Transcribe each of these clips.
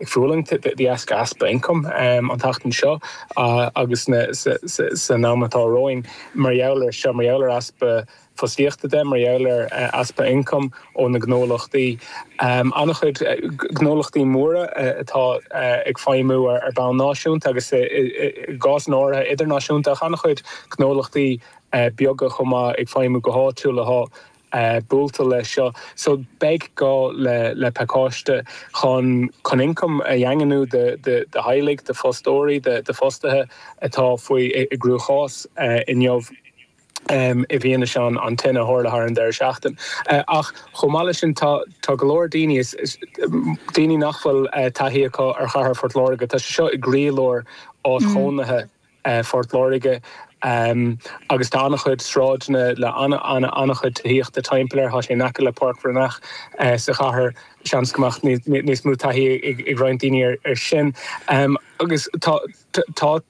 Ag fulaingt de dheasca easpa ioncaim an tseachtain seo agus san am atá romhainn mar gheall air seo, mar gheall ar easpa fostaíochta de, mar gheall ar easpa ioncaim ó na gnólachtaí. An-chuid gnólachtaí móra atá ag feidhmiú ar bhonn náisiúnta agus i gcásanna áirithe idirnáisiúnta ach an-chuid gnólachtaí beaga chomh maith ag feidhmiú go háitiúil. eh buailte leis seo so beidh gá le le pacáiste chun chun ioncam a dhaingniú do do do theaghlaigh, do fostóirí, do do fostaithe atá faoi i i gcruachás eh inniu em i bhfianaise an an tine a tharla thar an deireadh seachtain. Eh ach chomh maith leis sin tá tá go leor daoine is is daoine nach bhfuil eh taithí acu ar chathair Phort Láirge tá sé seo i gcroílár áit chónaithe Phort Láirge agus tá an-chuid sráideanna le an-chuid tithíochta timpeall air. Tá sé in aice le Páirc Bhreathnach sa chathair, seans go mbeadh níos mó taithí ag roinnt daoine air sin. Agus tá tá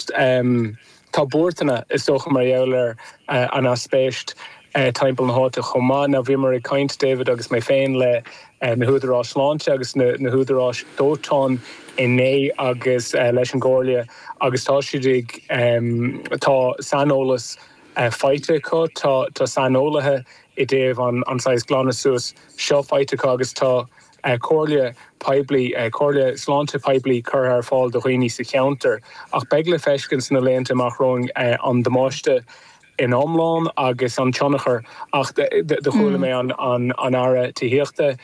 tá buairteanna, is dócha, mar gheall ar an aispeist. timpeall na háite chomh maith. Now bhíomar ag caint, David agus mé féin, le na húdaráis sláinte agus na húdaráis dóiteáin inné agus leis an gComhairle agus tá siad ag, tá saineolas faighte acu, tá saineolaithe i dtaobh an saghas glanadh suas seo faighte acu agus tá comhairle poiblí, comhairle sláinte poiblí curtha ar fáil do dhaoine sa cheantar ach beidh le feiscint sna laethanta amach romhainn an damáiste in iomlán agus an tionchar ach do chuala mé an Aire Tithíochta,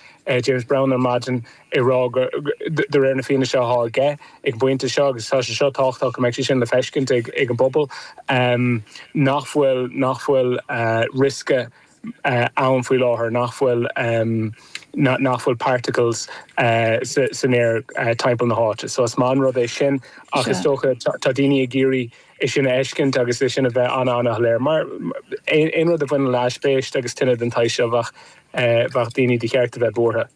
James Browne ar maidin ag rá go de réir na fianaise athá aige ag an bpointe seo agus tá sé seo tábhachtach go mbeidh sé sin le feiscint ag an bpobal nach bhfuil nach bhfuil riosca ann faoi láthair nach bhfuil nach bhfuil particles san aer timpeall na háite so is maith an rud é sin ach is dócha tá daoine ag iarraidh é sin a fheiscint agus é sin a bheith an-an-shoiléir mar aon rud a bhaineann le haispeist agus tine den tsaghas seo bheadh daoine de cheart a bheith buartha.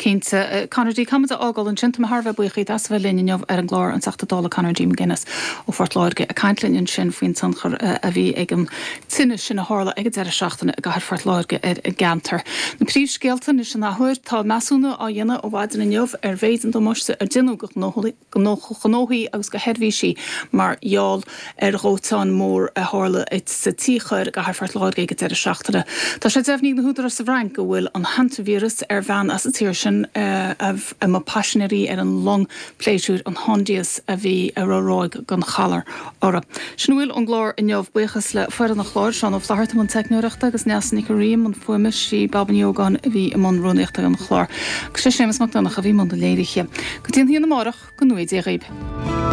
Cinnte. Conor D. Caithfidh muid a fhágáil ansin. Tá mé thar a bheith buíoch díot as a bheith linn inniu ar an gclár, an Teachta Dála Conor D. McGuinness ó Phort Láirge ag caint linn ansin faoin tionchar a bhí ag an tine sin a tharla ag an deireadh seachtaine i gcathair Phort Láirge ar an gceantar. Na príomhscéalta anois an athuair. Tá measúnú á dhéanamh ó mhaidin inniu ar mhéid an damáiste a déanadh do ghnóthaí. do ghnóthaí agus do sheirbhísí mar gheall ar dhóiteán mór a tharla sa Tigh Corr i gcathair Phort Láirge ag an deireadh seachtaine. Tá sé deimhnithe ag na húdaráis sa bhFrainc go bhfuil an hantaivíreas ar bhean as an tír sin a mba paisinéir í ar an long pléisiúir an Hondius a bhí a raibh ráig den ghalar. orthu. Sin a bhfuil ón gclár inniu. Buíochas le foireann an chláir, Seán Ó Flaithearta i mbun teicneoireachta, agus Neasa Nic Ríogh, i mbun fuaime, is le Baba Ní Ógáin, a bhí i mbun rúnaíochta an chláir, agus le Séamus Mac Donnacha, a bhí i mbun na léirithe. Go dtí an hAoine amárach, go ngnóthaí Dia dhaoibh!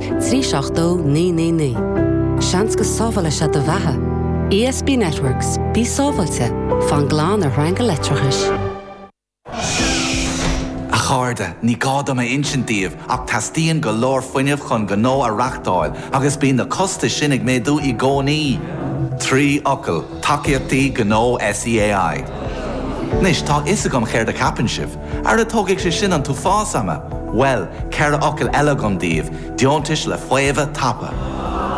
trí seacht dó naoi naoi naoi. Seans go sábhálfaidh sé do bheatha. ESB Networks, bí sábháilte, fan glan ar shreanga leictreachais. A chairde, ní gá dom a insint daoibh ach teastaíonn go leor fuinnimh chun gnó a reáchtáil agus bíonn na costais sin ag méadú i gcónaí! Trí fhocal, Tacaíochtaí Gnó SEAI. Anois, tá a fhios agam céard a cheapann sibh. Ara tógfaidh sé sin an t-uafás ama! Bhuel, ceithre fhocail eile agam daoibh, deontais le faomhadh tapa.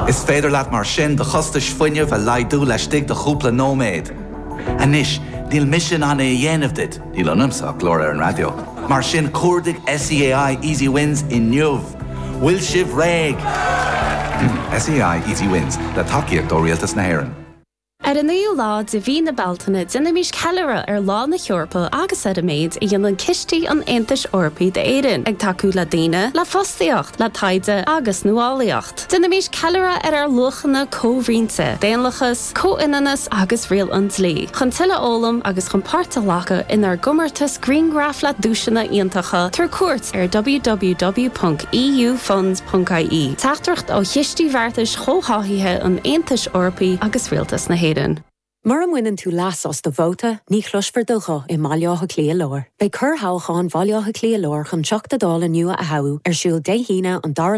Is féidir leat mar sin do chostais fuinnimh a laghdú laistigh de chúpla nóiméad. Anois, níl mise in ann é a dhéanamh duit, níl ionamsa ach glór ar an raidió, mar sin cuardaigh SEAI Easy Wins inniu! Bhfuil sibh réidh? SEAI Easy Wins, le tacaíocht ó Rialtas na hÉireann. Ar an naoú lá de mhí na Bealtaine déanaimís ceiliúradh ar Lá na hEorpa agus ar an méid a dhéanann cistí an Aontais Eorpaigh d'Éirinn, ag tacú le daoine, le fostaíocht, le taighde agus nuálaíocht. Déanaimís ceiliúradh ar ár luachanna comhroinnte, daonlathas, comhionannas agus riail an dlí, chun tuilleadh a fhoghlaim agus chun páirt a ghlacadh inár gcomórtas grianghraf le duaiseanna iontacha tabhair cuairt ar www.eufunds.ie Teachtaireacht ó Chistí Bheartais Chomhtháthaithe an Aontais Eorpaigh agus Rialtas na hÉireann. Mura mbaineann tú leas as do vóta, ní chloisfear do ghuth i mBaile Átha Cliath Láir. Beidh corrthoghchán Bhaile Átha Cliath Láir chun Teachta Dála nua a thoghadh ar siúl Dé hAoine an 2ú lá